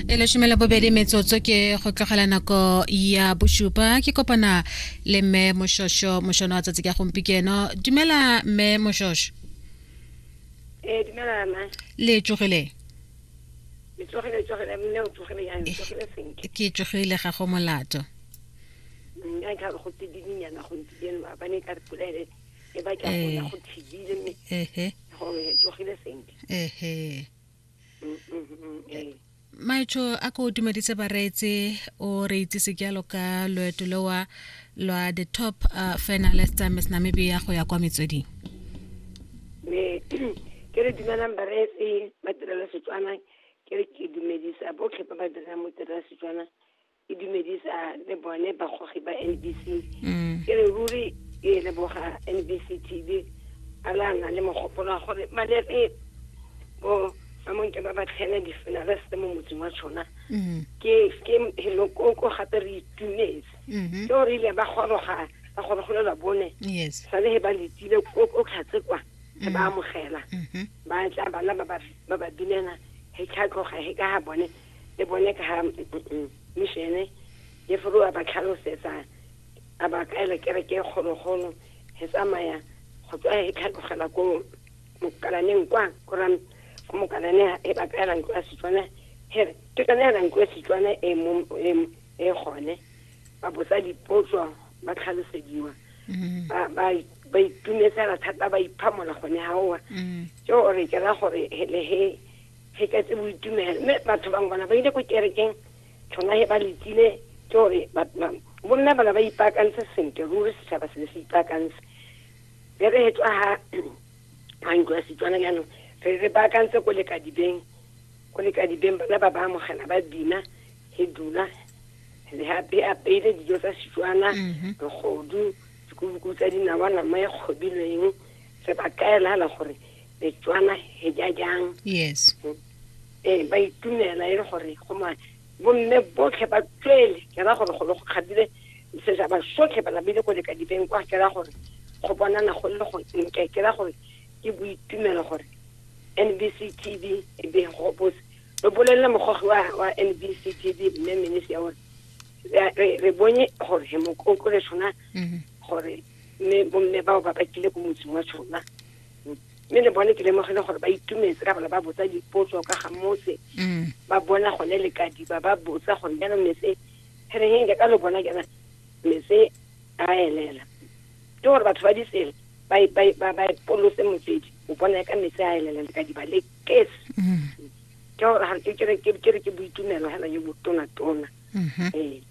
e leshome la bobedi metsotso ke go tlogela nako ya bosupa ke kopana le mme moshosho mošono wa tsatsi ka gompikeno dumela mme moshosho ee dumela ma le tsogile le tsogile tsogile mme o tsogile yang tsogile sentle ke tsogile ga go molato nka ka go tsidinyana go tsidinyana ba bane ka polele e ba ka go ya go thibile mme ehe go tsogile sentle ehe eh, maitsho a ko tumeditse bareetse o re itsise ke yalo ka loeto lewa lwa the top uh, finalist uh, miss namibia go ya kwa metsweding ke re dumelang bareetse ba tirela setswana ke re ke dumedisa botlhe ba ba dirang mo tirela setswana e dumedisa le bone bagogi ba nbc mm. ke re ruri e leboga nbc tv a la na le mogopolo wa gore ba lere bo samong ke ba ba tlhele di-finaliste mo motseng wa tshona mm-hmm. ke helokoko gape re itumetse mm-hmm. ke gore ile ba goroga ba gorogolelwa bone sa le he ba letile o tlhatse kwa he ba mm-hmm. amogela ba tla bana ba ba binela he tlhatloga he ka ga bone le bone ka ha mishene le furu a ba tlhalosetsa a ba kaela kereke e kgologolo he tsamaya go tswa he tlhatlogela ko mokalaneng kwa kora ko mokalane he ba kaela ntlo ya setswana he re ke tsone hela ntlo ya setswana e mo e e gone ba botsa dipotso ba tlhalosediwa mm-hmm. ba ba ba itumetsela thata ba iphamola gone ha oa jo mm-hmm. re ke ra gore le he Pheketse boitumelo. Mme batho bangwe bana ba ile ko kerekeng, tsona he ba letsile ke gore bomme bana ba ipaakantse sentle ruri, setšhaba se le se ipaakantse. Be re he tswa ha a ntlo ya Setswana jaanong re re baakantse ko lekadibeng, ko lekadibeng bana ba ba amogela ba bina he dula le hape apeile dijo tsa Setswana, mm-hmm. bogodu, dikubuku tsa dinawa, nama e kgobilweng, re ba kaela gore Setswana he ja jang. Yes. Eh ba itumela e le gore go ma bomme botlhe ba tswele ke ra gore go le go kgabile se sa ba sotlhe ba labile go leka dibeng kwa ke ra gore go bonana go le go nke ke ra gore ke boitumelo gore NBC TV e be go bose re bolelele mogogi wa wa NBC TV mme minisi ya gore re bone gore he mokoko le tshwana mm-hmm. gore mme bomme bao ba bakile ko motseng wa tshwana mme le bone ke lemogile gore ba itumetse ka bala ba botsa dipotso ka ga mose mm. ba bona gone le kadiba ba botsa gore jaanong mese re reng ka lo bona jaana mese a elela ke gore batho ba ditsela ba e, e, ba e polose motsedi o bona ka mese a elela le kadiba le kes mm. ke gore ke re ke boitumelo hela yo botonatona mm-hmm. ee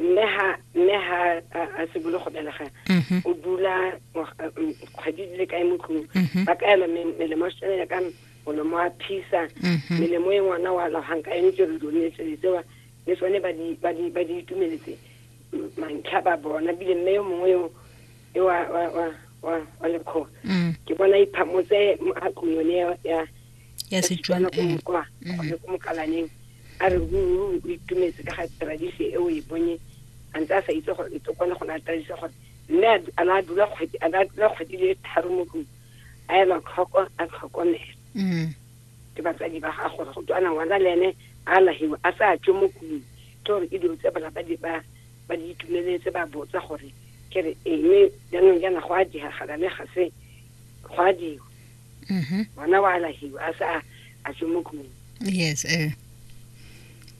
mme ha mme ha a simolola go belega mhm. o dula kgwedi di le kae mo tlong mhm. ba ka ela melemo tshwanela ka molomo wa phisa mhm. melemo e ngwana wa lagang ka yone tsere done tsele tsewa le tsone ba di itumeletse mantlha ba bona bile mme yo mongwe yo e wa wa wa wa lekgoa mm. ke bona iphamotse a tlong yone ya ya setswana ko eh. mokwa mm-hmm. ko mokalaneng a re o itumetse ka ga tradition e o e bonye a ntse a sa itse gore e kone go naya tradition gore mme a na dula kgwedi a na dula kgwedi le tharo mo tlong a ela tlhoko a tlhokomela mm-hmm. ke batsadi ba ga gore go tswana ngwana le ene a lahiwa a sa tswe mo tlong ke gore e dilo tse bana ba di ba ba di itumeletse ba botsa gore ke re eng jaanong jaana go a diagala le ga se go a diwa mhm. ngwana wa alahiwa a se a tswe mo kung yes eh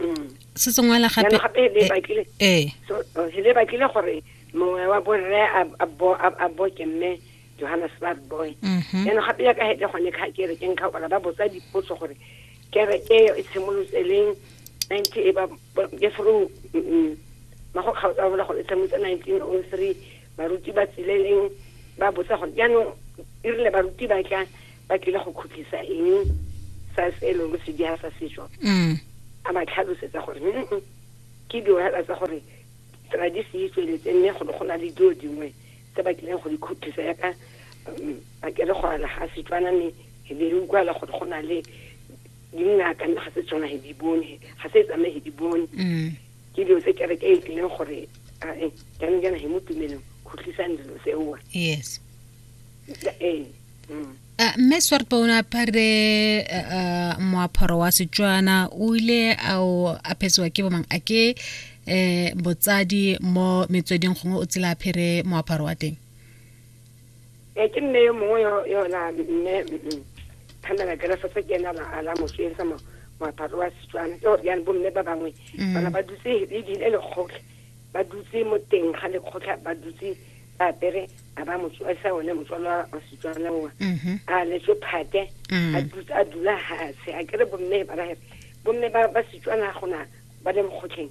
mm. se tsengwela gape gape le eh, batlile eh so oh, le batlile gore mongwe wa borre a bo a bo ke mme Johannesburg boy mhm. yana gape ya ka hete gone ka ke re ke nka gore ba botsa dipotso gore kere e e tshimolotse leng 90 e ba ke through mm, mm, mago kgaotsa bola gore e tshimolotse 1903 baruti ba tsile eng ba botsa gore jaanong e rile baruti ba tla ba tlile go khutlisa eng sa se e leng se diha sa setso mm. a ba tlhalosetsa gore ke diohela tsa gore tradisi e tsweletse mme go ne go na le dilo dingwe tse ba tlileng go di khutlisa yaka um, ba kere go ala ga setswana mme e be re utlwala gore go na le dingaka mme ga se tsona he di bone ga se tsamaye he di bone mm. ke dilo tse kereke e tlileng gore ae jaanong jaana he mo tumelong go tlisang dilo seoa yes ee mm. Uh, mme swarpa o ne apare uh, uh, moaparo wa setswana o ile a o aphetsiwa ke bomang a ke um botsadi mo metsweding gongwe o tsela aphere moaparo wa teng e ke nne yo mongwe yona mme phamela kerefo se ke ena la mosweng sa moaparo wa setswana ke gore jaanong bomme ba bangwe mm. bana ba dutse le dile lekgotlhe ba dutse mo teng ga lekgotlha ba dutse ba apere a ba motswasa one motswala wa setswana oa mm-hmm. a letswe phate mm. a dula gatshe a kere bomme ba ba bomme ba setswana gona ba le mokgotlheng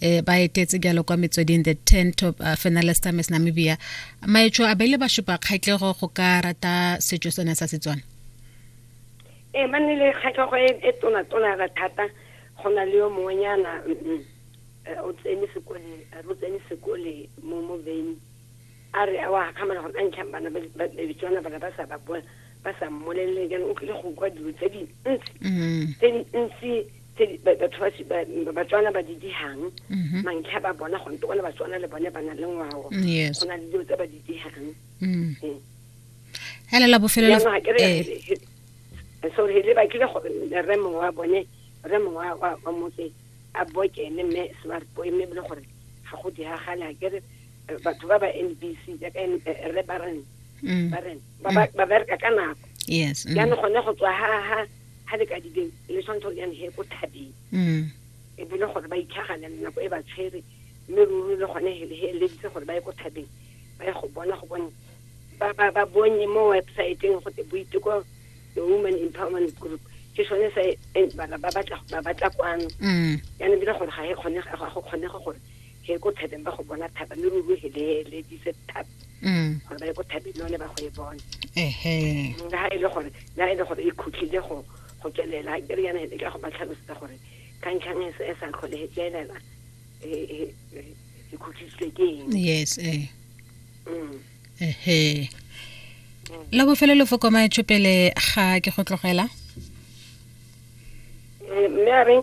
e ba etetse jalo kwa metsweding the ten top uh, finalist miss namibia maetsho a beile ba supa kgatlhego go ka rata setso sone sa setswana ee ba nne le kgatlhego e, e tonatona ra thata go na le yo mongwenyana mm, mm, eh, o tsene sekole re o tsene sekole mo mo veni A re a o a gakgamala gore a ntlhang bana babedi tswana bana ba sa ba bua ba sa mmolelele jaanong o tlile go kwa dilo tse dintsi mm-hmm. tse dintsi tse batho batswana ba di dihang mm-hmm. mantlha ba bona gone to gone batswana le bone ba na le ngwao go na le dilo tse ba di dihang mm. ee. hela la bofelelo eh. so re le ba kile gore re mongwe wa bone re mongwe wa motse a bokene mme smart boy mme bile gore ga go diragale a kere eh, batho ba ba NBC jaaka eh, eh, re ba reng mm. ba reng ba ba mm. bereka ka nako yes mm. jaanong gone go tswa ha ha ha le ka dibeng le tshwanetse gore jaanong he ko thabeng mm. e bile gore ba itlhagane le nako e ba tshwere mme ruri le gone he eleditse gore ba ye ko thabeng ba ye go bona go bone ba ba ba bonye mo websiteng go te boiteko the woman empowerment group ke sone se ba batla ba batla kwano mm. jaanong bile gore ga e kgone ga go kgonega gore he ko thabeng ba go bona thaba mme ruri o heleledise thaba mm. gore ba ye ko thabeng le one ba go e bona ehe le ha e le gore le ha e le gore e khutlile go go tswelela ke re yana e ka go ba tlhalosetsa gore ka ntlhang e se- e sa tlhole e tswelela e e- e- e khutlitswe ke eng yes eh Mm. ehe la bofelo lefoko maetsho pele ga ke go tlogela Eh, mme a reng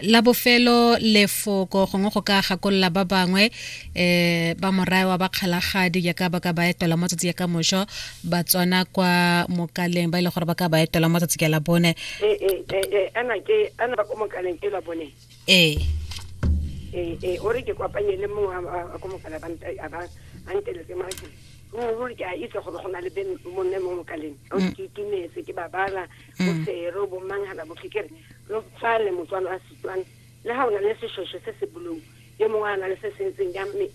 la bofelo lefoko gongwe go ka gakolola ba bangwe um ba morae wa bakgalagadi jaaka ba ka ba etela mo tsatsi ya ka mošo ba tswana kwa mokaleng ba e le gore ba ka ba etela mo tsatsi ka la bone eh, eh, ana ke ana ba ko mokaleng ke la bone ee ee o re ke kopanye le mongwe a ko mokala a nteletse maake ruri ke a itse gore go na le monne mo mokaleng ke itumetse ke babala mm. bo sero bo manghala bo kekere lo tswale motswalo a setswana le ha o na le seshweshwe se se bolong yo mongwe a na le se se ntseng ya mme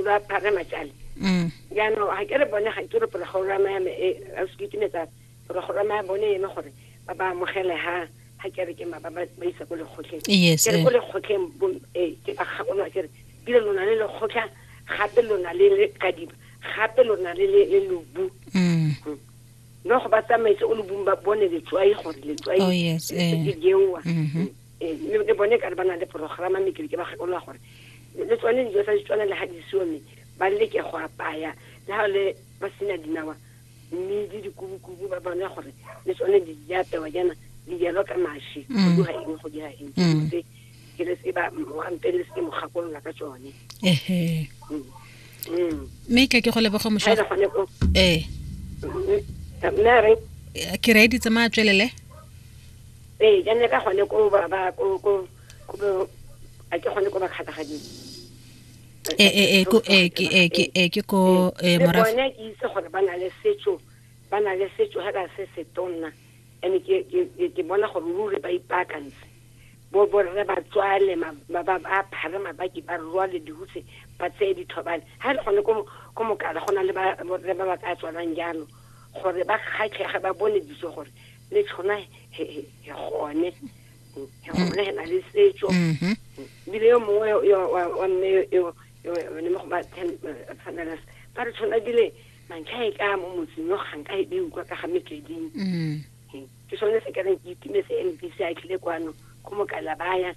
ba phare matšale mm. jaanong ga ke re bone ga ke re porogorama ya me e a se kitimetsa porogorama ya bone eno gore ba ba amogele ha ga ke re ke ma ba ba isa ko lekgotleng ke re ko eh. lekgotleng eh, ke ba gakolwa ke re bile lona le lekgotlha gape lona le le kadiba gape lona le le lobu mm. mm. no go ba tsamaetse o lobung ba bone letswai gore letswai oh, yes, eh. le jewa mm-hmm. eh, le bone ka re ba na le programa mme ke ba gakolola gore le tsone dijo tsa ditswana le ga di seo mme ba leke go apaya le ga le ba sena dinawa mme le dikubukubu ba bone gore le tsone di apewa jaana di jalo ka mashi go mm. dira eng go dira eng mm. ke le tseba wa mpe le se mo gakolola ka tsone ehe Mm. Mm. mme ka ke go leboga Ha mošwa e le gone ko ee mme a re eh, ke reedi tsamaya tswelele ee ke ne ka gone ko ba ba ko ko ko bo- a ke gone ko ba kgathagading ee ee ee ko- ee, ke ee, ke ee, ke ko ee, le morafe bone ke itse gore ba na le setso ba na le setso ga ka se se tonna and ke ke- ke- ke bona gore ruri ba ipaakantse bo borre ba tswale ba phare mabaki ba rwale dihuse ba tseye dithobane ga e le gone ko mokala go na le borre ba ba ka tswalang jalo gore ba kgatlhege ba bone ditso gore le tshona gone gone he na le setso mm-hmm. bile yo mongwe wa mme yone mo go ba tshwanela ba re tshwana bile mantlha e ka mo motseng yo ganka e beukwa ka ga metleding mm. ke sone se ka reng ke itumetse e ntse se a tlile kwano go mokala baya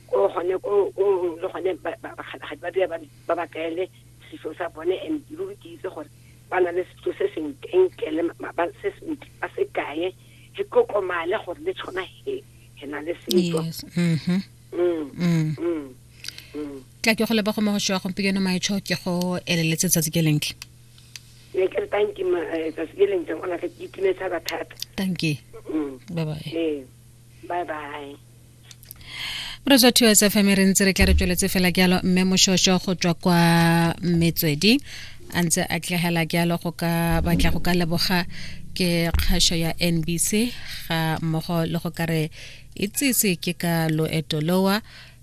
ko gone ko le gone bakgalagadi ba dira ba ba kaele setso sa bone and ruri ke itse gore ba na le setso se senkenkele ba se sentle ba se kaye ke kokomale gore le tshwana he he na le setso mm-hmm. mm, mm. mm, tla ke go leba go mo go shwa gompieno maetsho ke go eleletse tsatsi ke lenke ne ke re thank you eh, tsatsi le lentle gona ke itumetse thata thata thank you mm. bye bye ee bye bye re tswa two sfm re ntse re tla re tsweletse fela ke yalo mme moshosho go tswa kwa metswedi a ntse a tlegela ke yalo go ka batla go ka leboga ke kgašo ya nbc ga mmogo le go ka re itsese ke ka loeto lowa